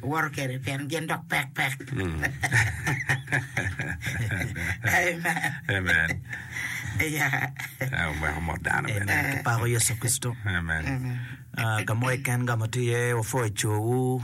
Iwoto kede pien gin dok pek pek. Amen. Omeko mot dano bene. Kipako Yecu Kricito. Ah, ka mo keken ka ma tye iye wupwoyo cowu,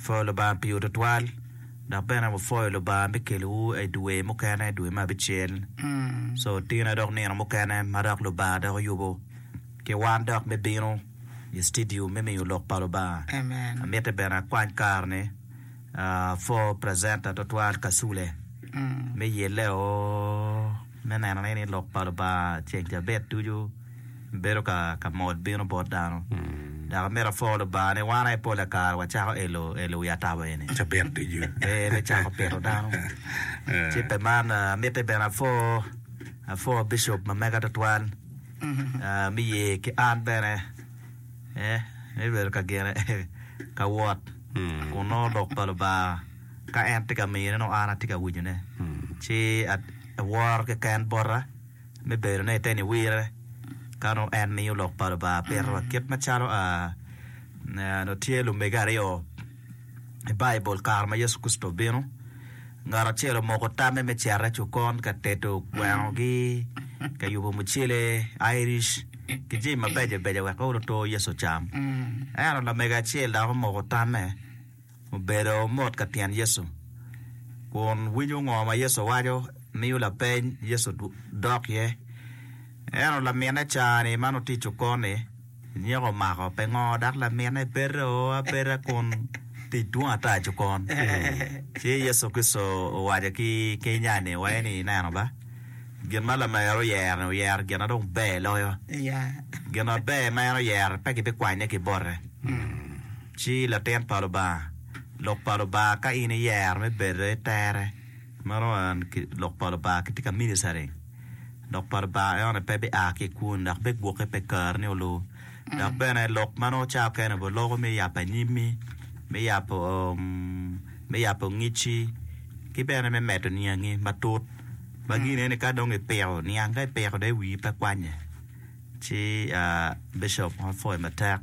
pwoyo Lubanga pi ot tutwal, dok bene wupwoyo Lubanga me kelowu i dwe mukene, dwe me abicel. So tine dok nino mukene ma dok Lubanga dok oyubo. Ki wan dok me bino i citidiu me miyo lok pa Lubanga. Amiti bene akwany kare-ni pwo precenta tutwal Kasule me yeleo me neno ni ni lok pa Lubanga ceng cabit ducu bedo ka mol bino bot dano. Dok amito apwo Lubanga ni wan aye pole kare wacako elo elo wi atabo eni ee me cako pito dano. Ci pe man amiti bene apwo apwo Bishop ma mega tutwal. me ye ki an bene me bedo ka gine ka wot kun nongo Lok pa Lubanga ka en tye ka mine nongo an atye ka winyone ci aworo keken bota me bedo ni ite niwire ka nongo en miyo Lok pa Lubanga pito wa kit macalo nongo tye lumege aryo I Baibul, kare ma Yecu Kricito obino, ngat acel omoko tamme me cito i cokon ka tedo gwengogi, ka yubo mucele, Irish, ki jami mabeco beco wek ool oto Yecu ocam. Ento lamego acel dok omoko tamme, obedo mot ka tyen Yecu, kun winyo ngo ma Yecu waco, miyo lapeny, Yecu dok iye. Ento laminne ca-ni ma nongo tye i cokon-ni, Nyeko omako pe ngo dok lamine bedo abeda kun tic dwong ata aco kon. Ci Yecu Kricito owaco ki Kenya ni waye ni ineno ba, gin ma lamego oyero ni oyero gin ma dong ber loyo. Gin ma ber ma en oyero pe kibi kwanye ki bote. Ci latin pa Lubanga, lok pa Lubanga ka in iyero me bedo itere. Meno en ki lok pa Lubanga kitye ka ministering lok pa Lubanga en aye pe bia ki i kwoni dok bigwoki pe kare ni olor dok bene lok ma nongo cawa kene obedo loko me yabo anyimi me yabo me yabo ngecci ki bene me medo niangi matut ma gin eni ka dong ipiko niang ka ipiko dong wii pe kwanye ci bicop onongo pwoyi matek.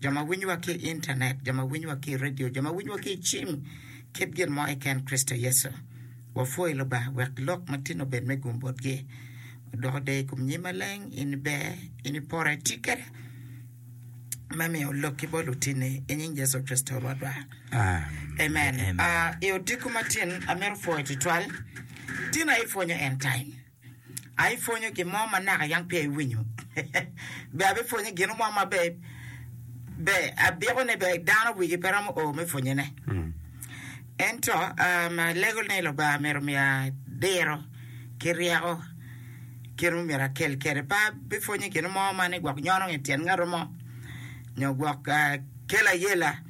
jo ma winyowa ki i intanet, jo ma winyowa ki i redio, jo ma winyowa ki i cim, kit gin mo keken Kricito Yecu. Wapwoyi Lubanga wek lok ma tino obed me gum botgi. Odoko deyo i kom nyim maleng, in iber, in ipore, iti kede me miyo lokki bot lutinni, i nying Yecu Kricito Rwotwa. Amen. Ah, I odiko matin, amito pwoyo tutwal tina ipwonyo end time. a ipwonyo gin mo ma naka yam peya iwinyo, be abipwonye gino mo ma be be abiko ni be dano wigi pe romo o me pwonyone. Ento um, alego ni Lubanga myero omiya diro ki ryeko kit ma myero akel kwede. Pe abipwonye gino mo ma ni gwok nyono nge tyen ngat mo nyo gwok ah, kelo ayela.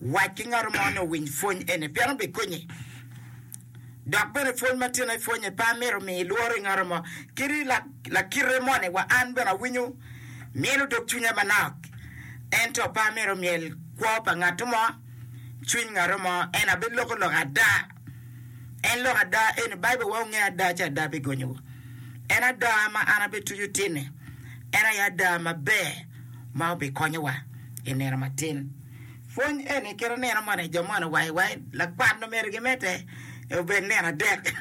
Wac ki ngat mo ni owiny pwony eni pien obikonyi. Dok bene pwony ma tino ipwonye pe amito miyi lworo i ngat mo kadi lakite moni wa an bene awinyo myelo dog cwinya manok. Ento pe amito myel kwo pa ngat mo, cwiny ngat mo, ento abiloko loka ada. En lok ada eni Baibul wa onge ada ci ada bigonyo wa. En ada ma an abe tuju tinne. En aye ada maber ma obi konyo wa i nino matin. Pwony eni kite nino moni i jo moni wai wai lakwan omeri gi mete e obed nino adek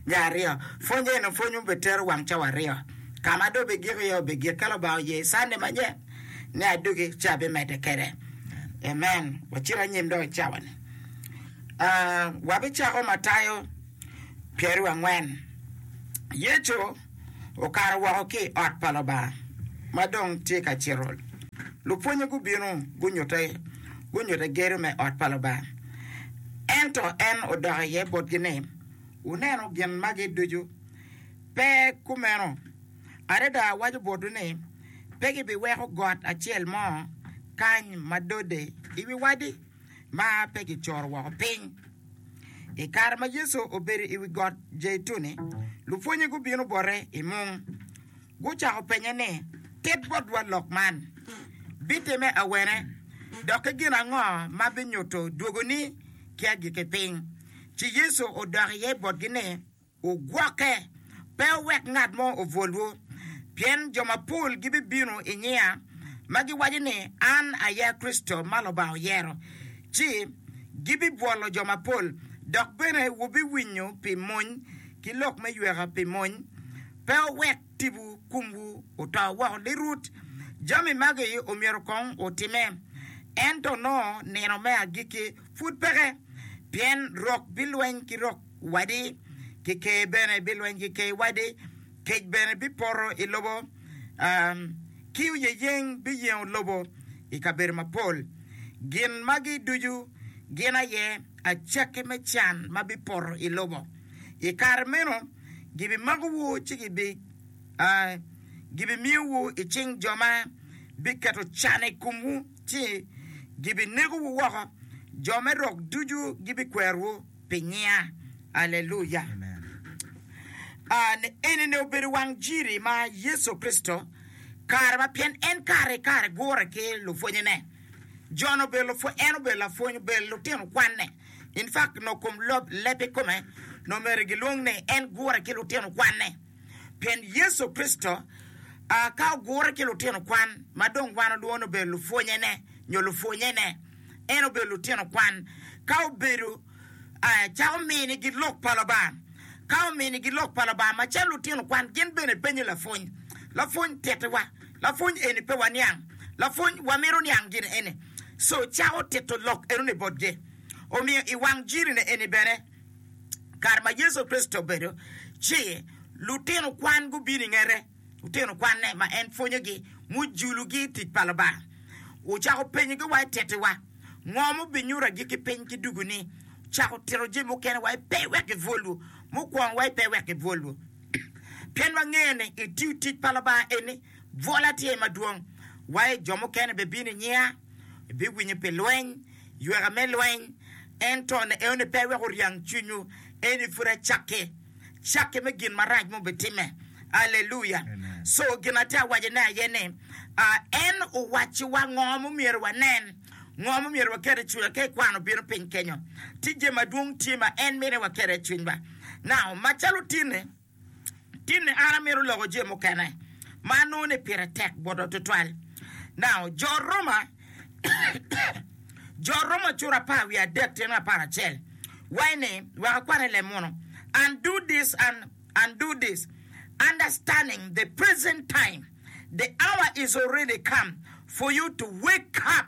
nya aryo. Pwony eni pwony mo be tero wang cawa aryo. Kama do be gik iye obe gik ka lubanga oye Sunday manye ni adugi ci abi mede kede. Amen. Wacit anyim dong i cawa ni. wabicako Matayo pyeraryo angwen. Yecu okato woko ki i ot pa Lubanga ma dong tye ka cito. Lupwonye gubino gunyute gunyute gedo me ot pa Lubanga. Ento en odok iye botgi ni, Wuneno gin magi ducu? Pe kumeno. Adada awaco botwu ni, pe gibiweko got acel mo kany ma dode i wi wadi. ma pe kicoro woko piny. I kare ma Yecu obedo i wi got Jeituni, lupwonnye gubino bote i mung. Gucako penye ni, Tit botwa lok man. Bitimme awene, dok ki gin ango ma binyuto dwogoni ki agikki piny? Ci Yecu odok iye botgi ni, Wugwokke, pe wuwek ngat mo obwolwu, pien jo mapol gibibino i nyinga, ma giwaco ni, 'An aye Kricito ma Lubanga oyero, ci gibibwolo jo mapol. Dok bene wubiwinyo pi mony ki lok me yweka pi mony. Pe wuwek tipo komwu oto woko lirut. Jami magi omyero kong otimme, ento nongo nino me agikki pud peke, pien rok bilweny ki rok. wadi, ki ker bene bilweny ki ker wadi, kec bene bipoto i lobo, ki oyeyeng biyengo lobo i kabedo mapol. Gin magi ducu gin aye acakki me can ma bipoto i lobo. I kare meno gibimakowu ci gibimiyowu i cing jo ma biketo can i komwu, ci gibinegowu woko, jo me rok ducu gibikwerowu. pi nyinga. Aleluya! Enini obedo wang jiri ma Yecu Kricito kare ma pien en kare ki kare gure ki lupwonnyene. Jon obedo lapwony, en obedo lapwony, obedo lutino kwanne. In fact, nongo kom lob leb kikome nongo myero gilwong ni en gure ki lutino kwanne. Pien Yecu Kricito ka ogure ki lutino kwan ma dong wan olwongo ni obedo lupwonnyene nyo lupwonnyene. en obedo lutino kwan, ka obedo calo ominigi Lok pa Lubanga. Ka ominigi Lok pa Lubanga macalo lutino kwan, gin bene penyo lapwony. Lapwony tittiwa. Lapwony eni pe waniang. Lapwony wamito niang gin eni. Co cako tito lok enoni botgi. Omiyo i wang Jiri-ni eni bene, kare ma Yecu Kricito obedo ci, lutino kwan gubino i ngete. lutino kwanne ma en pwonyogi mujulugi tic pa Lubanga. Ocako penyogi wa i tettiwa, Ngo mubinyuto agikki piny ki dugu-ni? Ocako tito jami mukene wa i pe wek gibwolwu, mukwongo wa i pe wek gibwolwu. Pien wangeyo ni i tiyo tic pa Lubanga eni, bwola tye madwong. Wa i jo mukene bibino i nyinga, ibiwinyo pi lweny, yweka me lweny, ento ne eno ni pe wek oryang cwinywu, eni pud acakki, cakki me gin marac ma obitimme. Aleluya! Co gin atye ka wacone aye ni, en owacciwa ngo ma myero wanen, ngo ma myero waket i cwinywa ka ekwano bino piny kenyo. Ticce madwong tye ma en mito ni waket iye cwinywa, nao macalo tinni. Tinni an amito loko jami mukene ma anongo ni pire tek bota tutwal. Now, jo Roma, jo Roma cura apar wiye adek tyen ki apar acel. Wai ni, wek akwane lem munu. And do this and and do this. Understanding the present time, the hour is already come for you to wake up.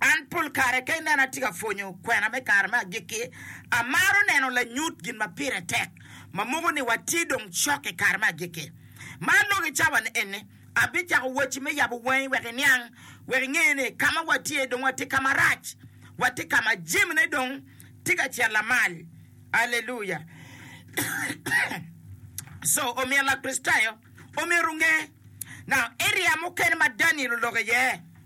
An pol kare ka inena atye ka pwonyo kwena me kare me agikki, amaro neno lanyut gin ma pire tek ma moko ni watye dong cok i kare me agikki. Ma aloko i cawa ni eni, abicako wacci me yabo wangi wek iniang, wek inge ni ka ma watye dong watye ka marac, watye ka ma jamine dong tye ka cen lamal. Aleluya! Co omyero Lakricitayo omyero onge. Now, area mukene ma Daniel oloko iye.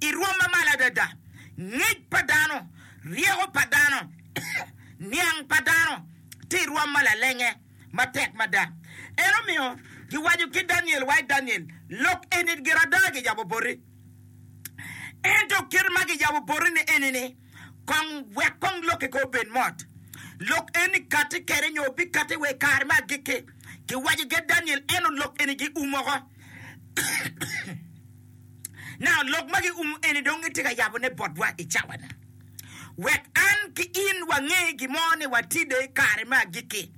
i rwom ma malo adada, ngec pa dano, ryeko pa dano, niang pa dano tye i rwom ma lalenge matek mada. En omiyo giwaco ki Daniel wa i Daniel lok eni gire ada giyabo boti. Ento kite ma giyabo boti-ni eni-ni, kong wek kong lokki kong obed mot. Lok eni kati kwede nyo bikati wa i kare me agikki, giwaco ki Daniel, ento lok eni giumo oko. Now, lok ma giumo eni dong gitye ka yabone botwa i cawani, wek an ki in wange gin mo ni watide i kare me agikki.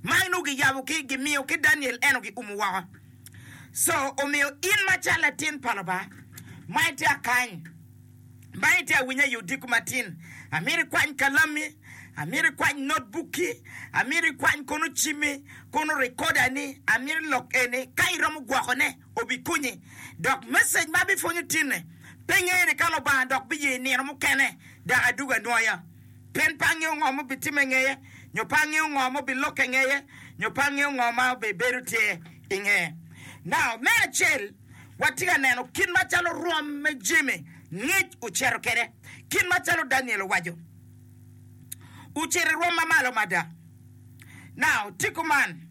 Ma inongo giyabo ki, gimiyo ki Daniel, eno giumo woko. So, omiyo in macalo latin pa Lubanga, ma itye akany, ma itye awiny aye odiko matin, amito ikwany kalammi, amito ikwany notbukki, amito ikwany kono cimmi, kono rekodani, amito ilok eni ka iromo gwokone. obikonye. Dok message ma abipwonyo tinne pe ngene ka Lubanga dok biye nino mukene dok adugo anwoya. Pien pe angeyo ngo ma obitimme ngeye, nyo pe angeyo ngo ma obilokke ngeye, nyo pe angeyo ngo ma obibedo tye i nge. Now, me acel, watye ka neno kit macalo rwom me jami ngic ocito kede, kit macalo Daniel owaco, ocito i rwom mamalo mada. Now, tye kuman.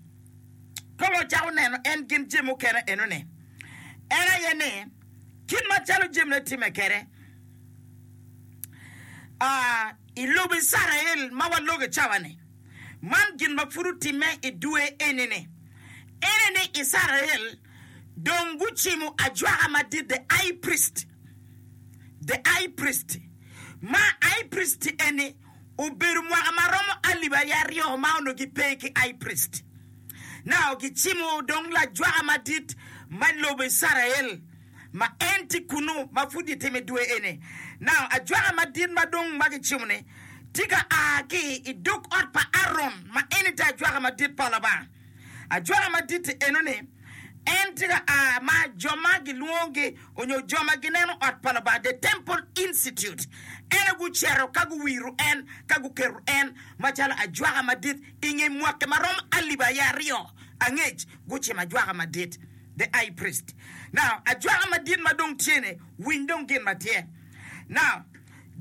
Ka wacako neno en gin jami mukene enoni, en aye ni, kit macalo jamine timme kede i lobo Icrael ma waloge cawa-ni, man gin ma pud otimme i dwe eni-ni. Ene ni Icrael dong gucimo ajwaka madit, the high priest, the high priest, ma high priest eni obedo mwaka ma romo alip aye aryo ma onongo gipe ki high priest. Nao gicimo dong lajwaka madit ma lobo Icrael ma en tye kunnu ma pud gitime dwe eni. Nao ajwaka madit ma dong ma gicimo-ni tye ka a ki i dog ot pa Aron ma en aye tye ajwaka madit pa Lubanga. Ajwaka madit-ti eno ni, en tye ka a ma jo ma gilwongogi onyo jo ma gineno ot pa Lubanga, The Temple Institute, ene guceto ka guwiro en ka guketo en macalo ajwaka madit i nge mwaki ma romo alip aye aryo angec gucimo ajwaka madit, The High Priest. Now, ajwaka madit ma dong tye-ni, winy dong gin ma tye. Now,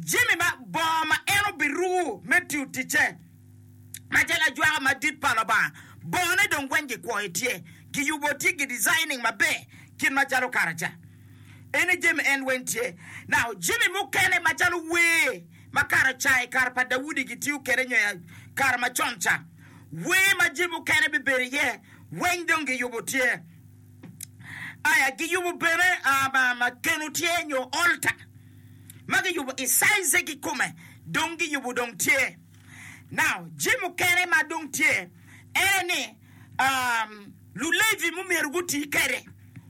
jami ma, bongo ma en obiruku me tiyo ticce. macalo ajwaka madit pa Lubanga, bongone dong weng gikwoyo tye, giyubo tye, gidesigning maber kit macalo karaca. Ene jami en weng tye. Now, jami mukene macalo wer ma karaca i kare pa Daudi gitiyo kwede nyo i kare macon ca, wer ma jami mukene bibedo iye weng dong giyubo tye. Aya, giyubo bene ah, ma, ma keno tye nyo altar ma giyubo i size-e kikome dong giyubo dong tye. Now, jami mukene ma dong tye ene ni, um, Lulevi mumyero guti kede,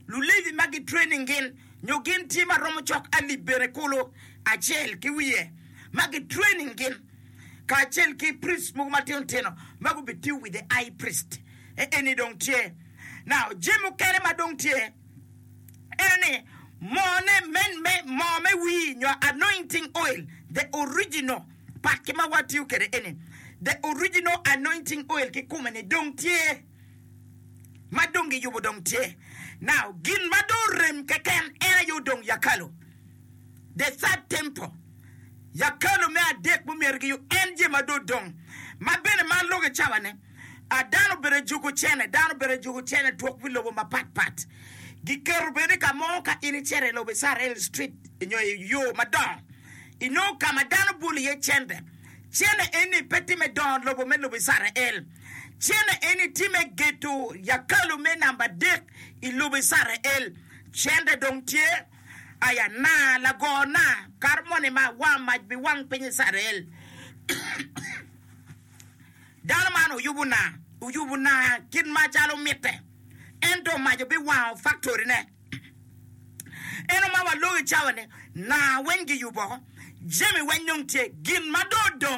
Lulevi ma gitraining gin, nyo gin tye ma romo cok alip bene kulu acel ki wiye, ma gitraining gin, kacel ki priests mogo matino tino ma gubitiyo with the high priest. E- Eni dong tye. Now, jami mukene ma dong tye ene ni, mone, men me, moo me wir nyo anointing oil, the original, Pakke ma watiyo kwede eni, The Original Anointing Oil kikume-ni dong tye, ma dong giyubo dong tye. Now, gin ma dong orem keken en aye odong yakalu, The Third Temple, yakalu me adek ma omyero giyub, en je ma dong odong. Ma bene man loge cawa ni, a dano obedo ajuku cene, dano obedo ajuku cene twok pi lobo mapat pat. Giketo bene ni ka mo ka in icito i lobo Isarel Street nyo i yo madongo, I nongo ka ma dano bwolo iye cente, cente eni pe tye me dongo lobo me lobo Icrael. Cente eni tye me gedo yakalu me namba adek i lobo Icrael. Cente dong tye aya na, lago na, kato moni ma wa mac biwang piny Icrael. Dano man oyubo na, oyubo na kit macalo mitte, ento mac obiwango faktorine. En omawa lok i cawane, naa weng giyuboo, jami weng dong tye. Gin ma dong odong